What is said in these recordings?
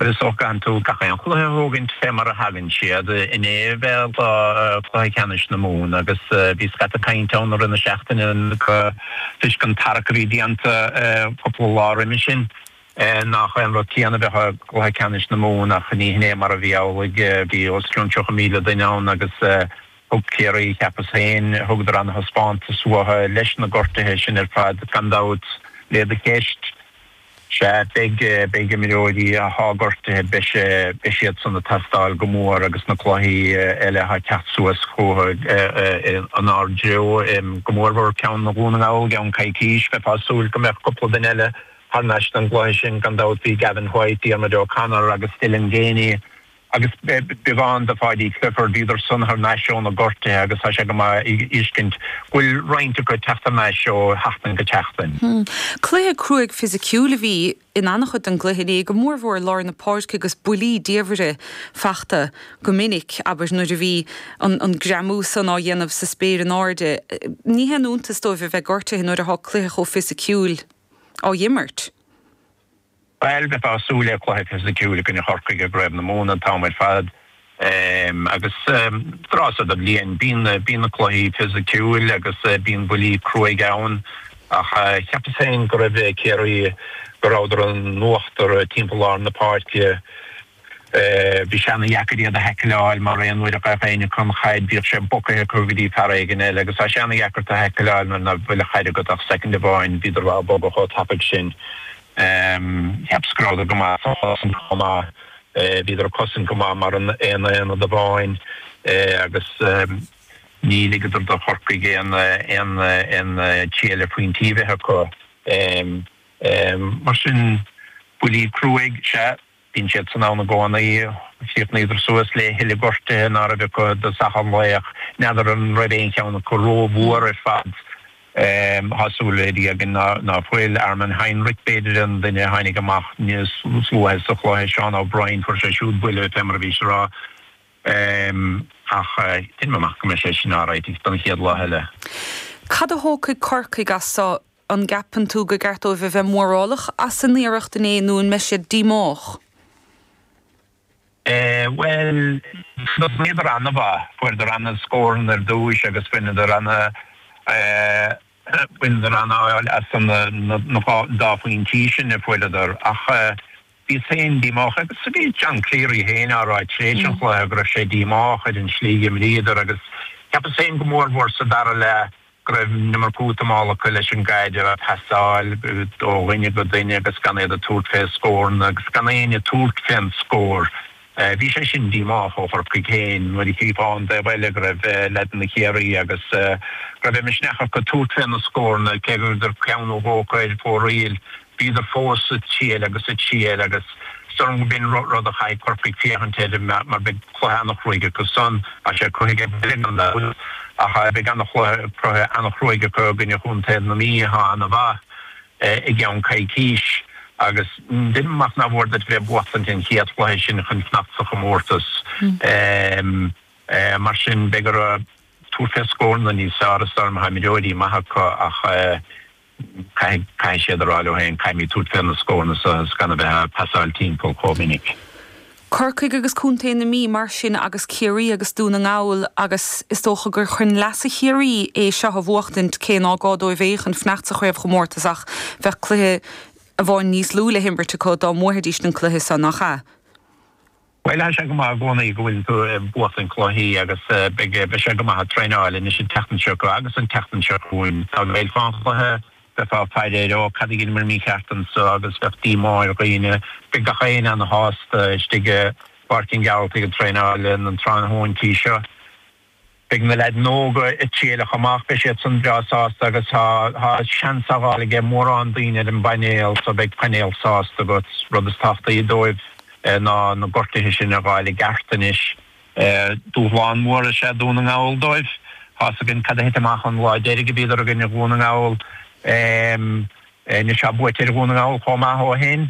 Is dócha go gcaitheann tú gach aon chluiche a thógaint fé mar a thagann siad. Inné b'ea lá Cluiche Ceannais na Mumhan agus bhí scata cainte ann i rith na seachtaine toisc an tarrac a bhí déanta cúpla lá roimis sin nach é an rud céanna a bheadh i gCluiche Ceannais na Mumhan ach ní hin é mar a bhí amhlaidh. Bhí os cionn 30,000 duine ann agus thug Ciarraí, cheapas féin, thugadar an-thaispeántas uathu leis na gortuithe sin ar fad gan dabht, le do cheist. Sea, beidh, beidh imreoirí atá gortaithe, beidh sé, beidh siad san ag teastáil go mór agus na cluichí eile atá ag teacht suas chúthu in ár dtreo, go mórmhór ceann Dhún na nGall i gceann coicís. Bheifeá ag súil go mbeadh cúpla duine eile thar n-ais don gcluiche sin gan dabht, bhí Gavin White, Diarmuid O'Connor agus Dylan Geaney, Agus beagán de Pháidí Clifford, bhíodar san thar n-ais ó na gortuithe agus tá sé go maith a fheiscint go bhfuil roinnt acu ag teacht thar n-ais ó sheachtain go tseachtain. Cluiche cruaidh fisiciúil a bhí in an-chuid den gcluiche inné, go mórmhór lár na páirce agus buillí diamhaire fachta go minic, abair, nuair a bhí an greamú san á dhéanamh sa spéir in airde. Ní haon iontas dóibh a bheith gortaithe nuair athá cluiche chomh fisiciúil á imirt. Bhail, bheifeá ag súil le cluiche fisiciúil i gcoinne Chorcaigh i gCraobh na Mumhan an t-am ar fad agus tráth so de bhliain, bíonn na cluichí fisiciúil agus bíonn buillí cruaidh ann ach cheapas féin go raibh Ciarraí, go rabhadar in uachtar timpeall lár na páirce. Bhí sé ana dheacair iad a thaicleáil mar aon uair a ghabhadh éinne acu an chaid bhíodh sé bogaithe acu go dtí fear éigin eile agus tá sé ana dheacair tú a thaicleáil nuair ná fuil an chaid agat ach soicind amháin bhíodar á bogadh chomh tapaidh sin cheapas go rabhadar go maith sa chosaint chomh maith bhíodar ag cosaint go maith mar an aon aonad amháin agus níor ligeadar do Chorcaigh aon aon tslí eile puinn slí a bheith acu mar sin buillí cruaidh, sea. Bíonn siad san ann i gcónaí. Chríochnaíodar suas le tuilleadh gortuithe ná raibh acu i dtosach an lae, ach n'fheadar an raibh aon cheann acu rómhór ar fad. Tá súil le Dia againn ná fuil. Armin Heinrich, b'fhéidir, an duine a tháinig amach níos luaithe sa chluiche, Seán O'Brien, fuair sé siúd buille, fé mar a bhís ag rá, ach deinim amach go mbeidh sé sin alright don chéad lá eile. Cad a thógfaidh Corcaigh as seo? An gceapann tú go gceart dóibh a bheith mórálach as a n-iarracht inné nó an mbeidh siad díomách? Bhuel, thosnaíodar an-mhaith, fuaireadar an-scóranna ar dtús agus bhaineadar an-fháil as an dá phointí sin a fuaireadar ach, Bhíos féin díomách agus sa bhí John Cleary féin á rá tar éis an chluiche go raibh sé díomách ar an tslí a d'imríodar agus cheapas féin go mór mhór sa dara leath go raibh an iomarca útamála acu leis an gcaid a phasáil ó dhuine go duine agus gan iad ag tabhairt fé scóranna agus gan éinne ag tabhairt fén scór. Bhí sé sin díomách ó Chorcaigh féin nuair a chífeá ón dtaobh eile go raibh leaideanna Chiarraí agus go raibh de mhisneach acu tabhairt fé na scóranna, cé go ndeachadar ceann nó dhó acu ar fóraoil, bhíodar fós ag triail agus ag triail agus is dócha gurb in rud a chaithfidh Corcaigh féachaint air mar beidh cluiche an-chruaidh acu san, tá sé cruaidh ag Baile Gunnair gan dabht, ach beidh an-chluiche, cluiche an-chruaidh acu i gcoinne chontae na Mí atá an-mhaith. I gceann coicís, agus déarfainn nach foláir duit bheith buachtaint an chéad chluiche sin chun fanacht sa chomórtas. Mar sin, beidh orthu tabhairt fé scóranna níos fearr is tá na himreoirí maithe acu ach caithfidh caithfidh siad a rá leo féin, caithfimid tabhairt fé na scóranna so is gan a bheith ag pasáil timpeall chomh minic. Corcaigh agus Contae na Mí, mar sin, agus Ciarraí agus Dún na nGall, agus is dócha gur chun leasa Chiarraí é seo a bhuachtaint, cé ná gá dóibh é chun fanacht sa chraobhchomórtas ach bheadh cluiche amháin níos lú le himirt acu dá mbuafaidís an cluiche seo, nach ea? Bhuel, tá sé go maith i gcónaí go bhfuil tú ag buachtaint cluichí agus beidh sé go maith ag traenáil anois an tseachtain seo agus an tseachtain seo chugainn. Dá gcaillfeá an cluiche. Bheifeá ag fiafraí, Ó, cad a dheineamar mícheart anso? agus bheadh díomá ar dhaoine. Bheadh gach éinne ana shásta istigh i bPáirc an Ghearaltaigh ag traenáil na tráthnóintí seo. Beidh na leaideanna óga ag triail chomh maith, beidh siad san breá sásta agus tá tá seans á fháil aige mórán daoine ar an bpainéal so beidh painéal sásta agat. Rud is tábhachtaí dóibh ná na gortuithe sin a dh'fháil i gceart anois. Dúshlán mór is ea Dún na nGall dóibh. Tá's againn cad a thit amach an lá deiridh a bhíodar i gcoinne Dhún na nGall. Anois tá buaite ar Dhún na nGall chomh maith ó shan.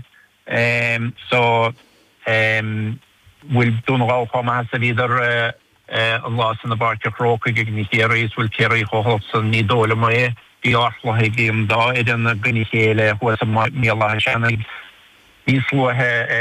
So, bhfuil Dún na nGall chomh maith is a bhíodar an lá san i bPáirc an Chrócaigh i gcoinne Chiarraí is bhfuil Ciarraí chomh holc san? Ní dóigh liom é. Bhí ardchluiche ag an dá fhoireann i gcoinne a chéile thuas i mBéal Átha Seanaidh níos luaithe.